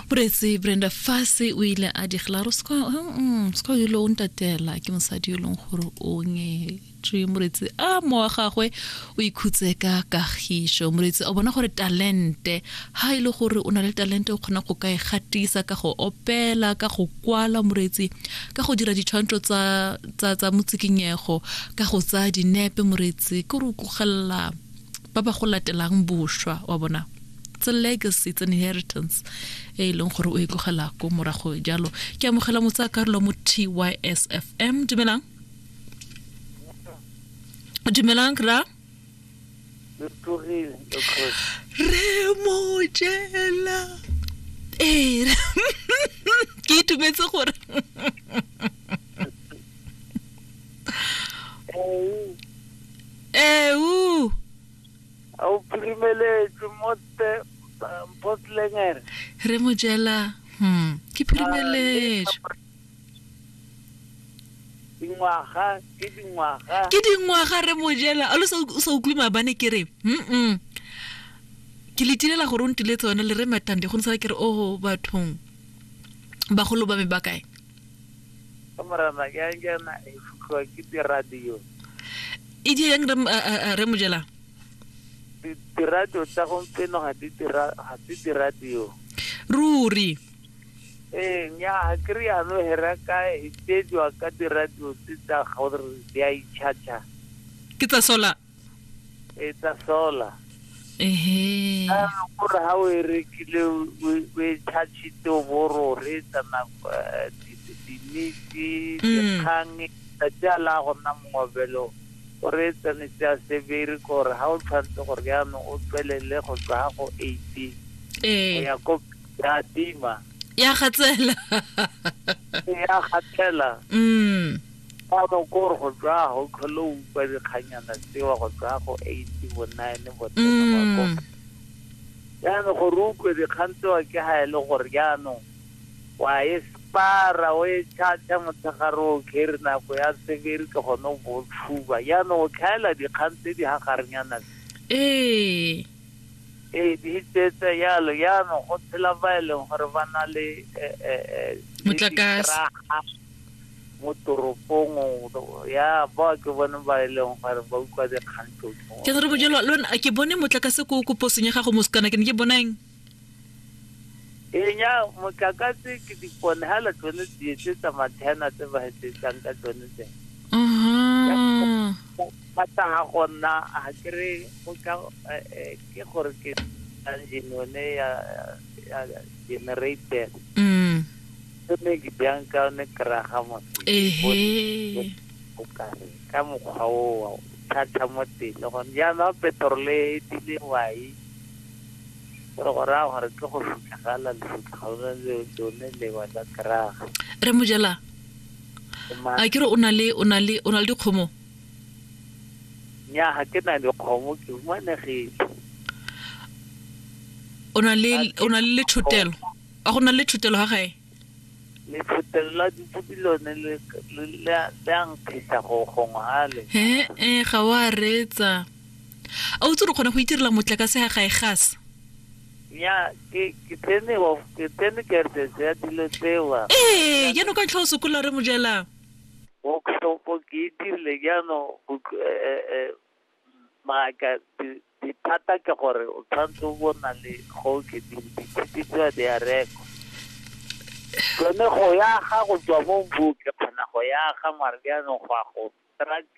boretse brenda fase o ile a diglaro se mm, ka yo lo o ntatela ke mosadi yo e leng gore o ngetšwe moretsi a mo wa gagwe o ikhutse ka kagišo moretsi o bona gore talente ha e le gore o na le talente o kgona go ka e gatisa ka go opela ka go kwala moretsi ka go dira ditshwantsho tsa motsikinyego ka go tsaya dinepe moretsi ke re o kogelela ba ba go latelang bošwa wa bona it's a legacy it's an inheritance e e leng gore o e tlogela ko morago jalo ke amogela motsa karolo mo tysfm dumelang dumelang ra re mojela ee ke itumetse gore Ewu! A o phirimeletswe mo te Mpotlengere? Re mo jela. Hmm, ke phirimeletswe. Dingwaga ke dingwaga. Ke dingwaga re mo jela. A lo sa o sa utlwe mabane ke re. Mm. Ke le tilela gore o ntile tsone le re matande go ntsala ke re o bathong. Bagolo ba me ba kae? Ke morena ke yang ke na e futlwa ke diradio. E di yang re eh, eh, eh, re mojela. Di- Diradio tsa gompieno ga di dira ga se diradio. Ruri. Ee nya ga ke re yano hera ka e tsejwa ka diradio tse tsa gore di a itšhatšha. Ke tsa sola. e tsa solar ehe a gore ha o e rekile o e chargete o bo ro re tsa nako eh, dinitse dikgang tsa tsa la go nna mongobelo o re tsa ne tsa sebere gore ha o tshwanetse gore jaanong o tswelele go tswa ha go 18 go ee ya ko ya tima ya gatsela ya gathela mm Ano kore go tswa go tlhole o utlwa dikganyana tsewa go tswa go eighty bo nine bo mm. jaanong gore o utlwe dikgang tsewa ke ga e le gore jaanong wa e spara o e chacha motshegare o kere nako ya severi ke gone o bo tshuba jaanong o tlhaela dikgang tse di gagarenyana ee ee di tsetse yalo jaanong go tshela ba e leng gore ba na le eh, eh, eh, motlakase mo toropong ya ba ke bone ba e leng gore ba utlwa dikgang tlotlo ke re bojelo lona ke bone motlakase ko ko posong ya gago mo sekana ke ne ke bonang enya motlakase ke dipone ha la tsone di etse tsa mathena tse ba etsetsang ka tsone tse ba tla ga gonna a kere go tla eh, eh, ke gore ke engine yone ya generator mm. Tshwanedi bjang ka one keraga mosebone o kare ka mokgwa o thatha mo teng le gone jaanong petrole e dile wai gore go raya gore ke go sutlagala lesutlagalo lone lewa la keraga re mojela a ke re o na le o na le o na le dikgomo nya ga ke na dikgomo ke humanegile o na le o na le lethotelo A go na le thutelo ga gae? Lefotelo la dipupi lone le, le, le, a- le a nkgisa go gongwe ga le. He, e, ga o a reetsa. A o tse re kgona go itirela motlakase ga gae gas? Nya, ke, ke tsene, wa- ke tsene kertsetse ya dilo tsewa. Ee, jaanong ka ntlha o sokola re mojela. Workshop ke e dirile jaanong, go tl- eh, eh, eh, Maaka, di- dithata ke gore o tshwanetse o bo o na le go o kgethile ditshipi tseo di a rekwa tsone go yaga go tswa mo mbu ke kgona go yaga mare jaanong go ya go struggle